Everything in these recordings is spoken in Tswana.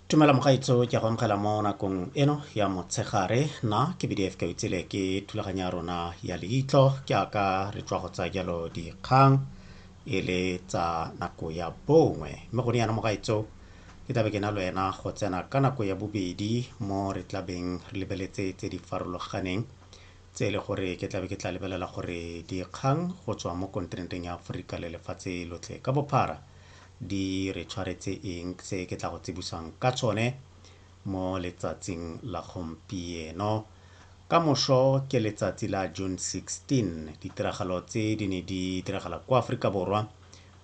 tumela mogaitso ke go amogela mo nakong eno ya motshegare na ke bdf ka itsele ke thulaganyo ya rona ya leitlo ke aka re tswa go tsa jalo dikgang e le tsa nako ya bongwe mme go ne yana mogaitso ke tlabe ke na le wena go tsena ka nako ya bobedi mo re tlabeng re lebeletse tse di farologaneng tse e le gore ke tlabe ke tla lebelela gore dikgang go tswa mo kontinenteng ya aforika le lefatshe lotlhe ka bophara di re tshwaretse eng se ke tla go tsebusang ka tsone mo letsatsing la gompieno ka moso ke letsatsi la June 16 ditiragalo tse di ne di diragala kwa Aforika Borwa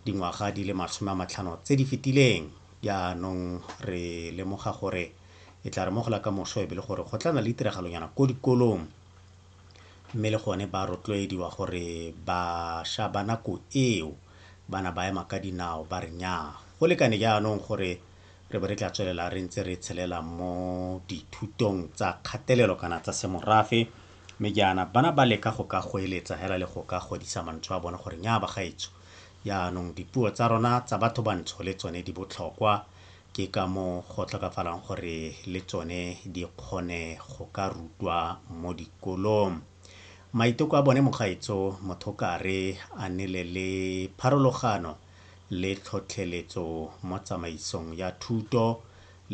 dingwaga di le masome a matlhano tse di fetileng jaanong re lemoga gore e tla re mogola ka moso e be le gore go tlana le ditiragalonyana ko dikolong mme le gone ba rotloediwa gore bašwa ba nako eo ba na ba ema ka dinao ba re nyaa. Go lekane jaanong gore re bo re tla tswelela re ntse re tshelela mo dithutong tsa kgatelelo kana tsa semorafe, mme jaana bana ba leka go ka goeletsa hela le go ka godisa mantswe a bone gore nyaa bagaetsho, jaanong dipuo tsa rona tsa batho bantsho le tsone di botlhokwa Ke ka moo go tlhokafalang gore le tsone di kgone go ka rutwa mo dikolong. Maiteko a bone mogaetso Mothokare a nele le pharologano le tlhotlheletso mo tsamaisong ya thuto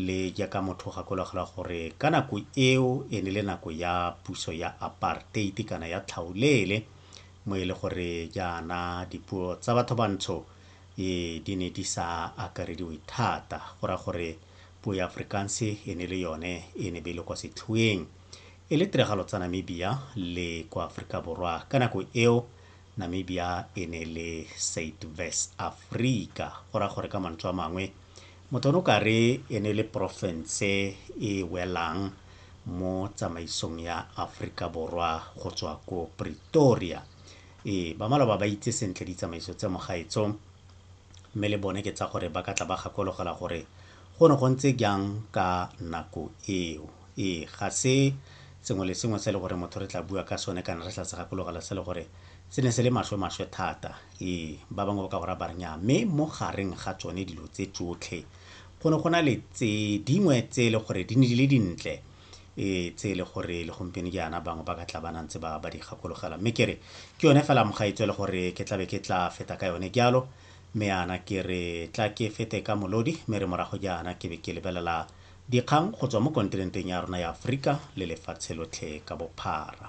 le jaaka motho o gakologelwa gore ka nako eo e ne le nako ya puso ya apartheid kana ya tlhaolele mo e le gore jaana dipuo tsa batho bantsho Ee, di ne di sa akarediwe thata, go raya gore puo ya Afrikaanse e ne e le yone e ne be e le kwa setlhoeng. E le tiragalo tsa Namibia le kwa Aforika Borwa ka nako eo, Namibia e ne e le Suidwes-Afrika, go raya gore ka mantswe a mangwe, motho o ne o ka re e ne e le porofense e e welang mo tsamaisong ya Aforika Borwa go tswa ko Pretoria. Ee, ba maloba ba itse sentle ditsamaiso tsa mogaetso, mme le bone ke tsa gore ba ka tla ba gakologelwa gore go ne go ntse jang ka nako eo. Ee, ga se sengwe le sengwe se le gore motho re tla bua ka sone kana re tla se gakologela se le gore se ne se le maswe-maswe thata. Ee, ba bangwe ba ka go ra ba re nnyaa, mme mo gareng ga tsone dilo tse tsotlhe go ne go na le tse dingwe tse e le gore di ne di le dintle. e tse e le gore le gompieno jaana bangwe ba ka tla ba nantse ba ba di gakologela mme ke re ke yone fela mogaetswe le gore ke tlabe ke tla feta ka yone jalo mme yana ke re tla ke fete ka molodi mme re morago jaana ke be ke lebelela dikgang go tswa mo kontinenteng ya rona ya aforika le lefatshe lotlhe ka bophara